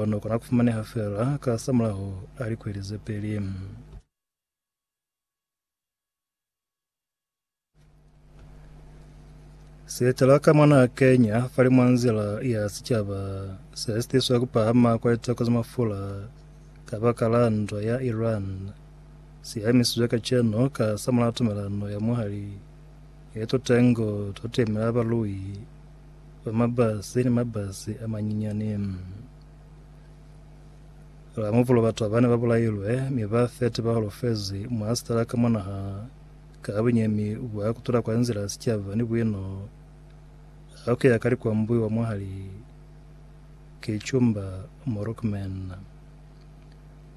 ono kona kufumaneha feela kasamulaho a likweli zepeli. Sietela ka mwana Kenya fali mwa nzila ya sicaba se sitiswa kupahama kwa liteko za mafula ka baka la ndwa ya Iran siamisizwe kaceno kasamulaho tumelano ya mwahali ye tutengo twa tuemela balui ba mabasi ni mabasi a manyinyani. Ba mupulo batu abane ba bulailwe mi ba 30 ba holofezi mwa sitala ka mwa naha ka bunyemi bwa kutula kwa nzila ya sicaba ni buino ha ku ya ka likwambui wa mwahali ki Chumba Morocman.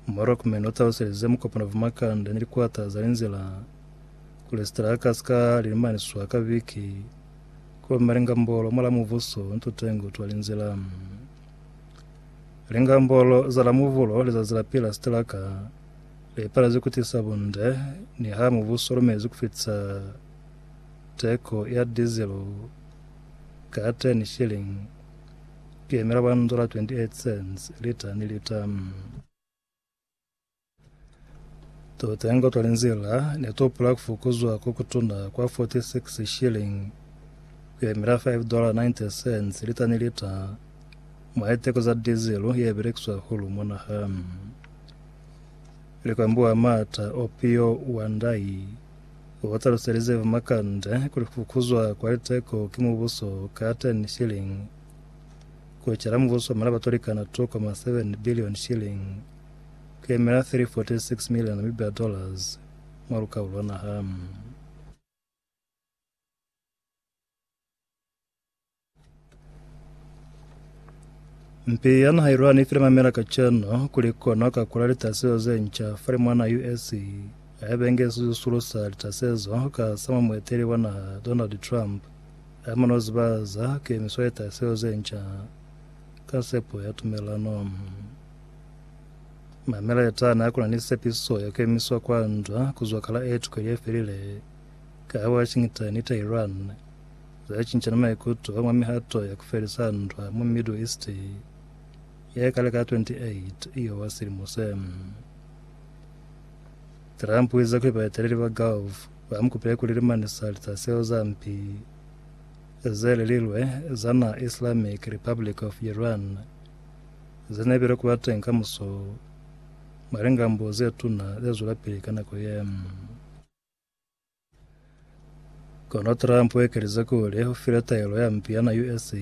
Morocman o taluselize mukopano va makande ni likwata za linzila kuli sitala ka si ka lilimaniswa ka viki Kulomba lingambolo mwa la muvuso nto tengu twa linzila. Lingambolo za la muvulo lizazi la pila sitilaka li palezwi kutisa bunde ni ha muvuso lumezi kufitisa teko ya dizilo ka 10 shilling kuyemela 1 dola 28 cents lita ni lita. Tutengo twa linzila netupula kufukuzwa kokutuna kwa 46 shilling kuyemela $5.90 lita ni lita mwa liteko za dizilu yebelekiswa hahulu mwa naha. Likwambi wa Maata Opio Wandai utaluselize Vumakande kuli kufukuzwa kwa liteko ki mubuso ka 10 shilling ku ecela mubuso wa malaba tolikana K2.7 billion shilling, ku yemela 346 million Namibia dollars, mwa lukau lwa naha. Mpi ya naha Iran ifile mamela kacenu kuli ikona ka kula litasezo zenca falimwa naha US ayabengezi zisulo sa litasezo ka sa mwa mueteli wa naha Donald Trump Ha mu no ziba za kemiso ye tahiselo ze nca ka sepo ya tumelano, mameletani a ku na ni sepiso ya kemiswa kwa ndwa ku zwa kala e tukeli ye felile ka ha Washington ni Tehran za cincana maikuto mwa mihato ya ku felisa ndwa mwa Middle East ye kale ka 28 Iowa silimo se. Trump u ize kuli baeteleli ba Gulf Ba mu kupile kuli limani za lica zeo za mpi ze lililwe za na Islamic Republic of Iran ze ne bile ku ba teñi ka muso mwa lingambo ze tuna ze zwelapili ka nako ye. Kono Trump u ekelize kuli u file taelo ya mpi ya na US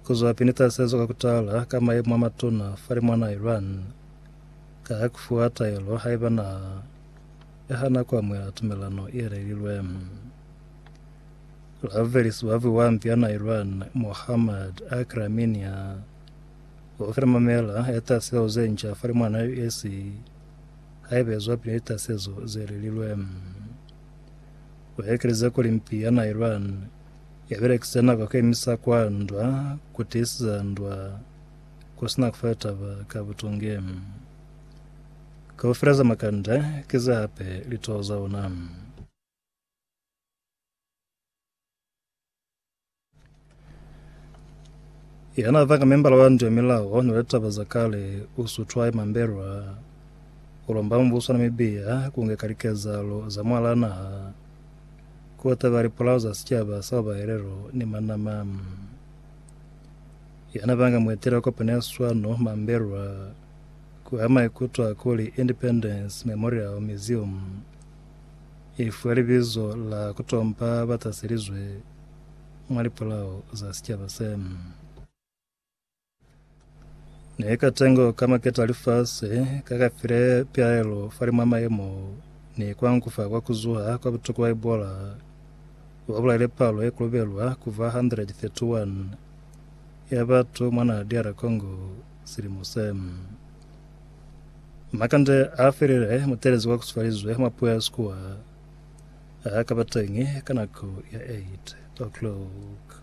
ku zwa pili ni tasezo ka ku tala ka mayemo a matuna fa limu a na Iran ka ku fuwa taelo haiba na Ka hana ku amuhela tumelano ye lelilwe, ravelisi wa viwambi ya na Iran, Mohammad Akramin ya o fela mamela ya taseho ze nca fa limwana ya US haiba e zwapili ni tasezo ze lelilwe. O ekeleza kuli mpi ya na Iran ya belekisa nako ku emisa kwa ndwa ku tiisiza ndwa ku sina ku fa taba ka butungi. Kaufela za makanda ki za hape litoho za ona. Ya na vanga membala wa ndu ya milao ni litaba za kale u sutwaye mambelwa, u lomba mubuso wa Namibia ku ngeka likezahalo za mwalaa naha ku taba lipulao za sicaba sa babahelelo ni manama. Ya na vanga mueteli wa kopano ya swano mambelwa, Ku ama ikutwa kuli Independence Memorial Museum i fiwe libizo la ku tompa ba taselizwe mwa lipolao za sicaba se ne ka tengo ka maketa lifasi ka ka file pilaelo fa limwa mayemo ni kwa nkufa kwa ku zuha kwa butuku ba Ebola wa bulaile palo ye kolobelwa ku ba 131 ya batu mwa naha DR Congo. Silimo se na kande a felile mutelezi wa kusifalizwe mwa puo ya Sikuwa a ka ba teñi ka nako ya 8 o'clock.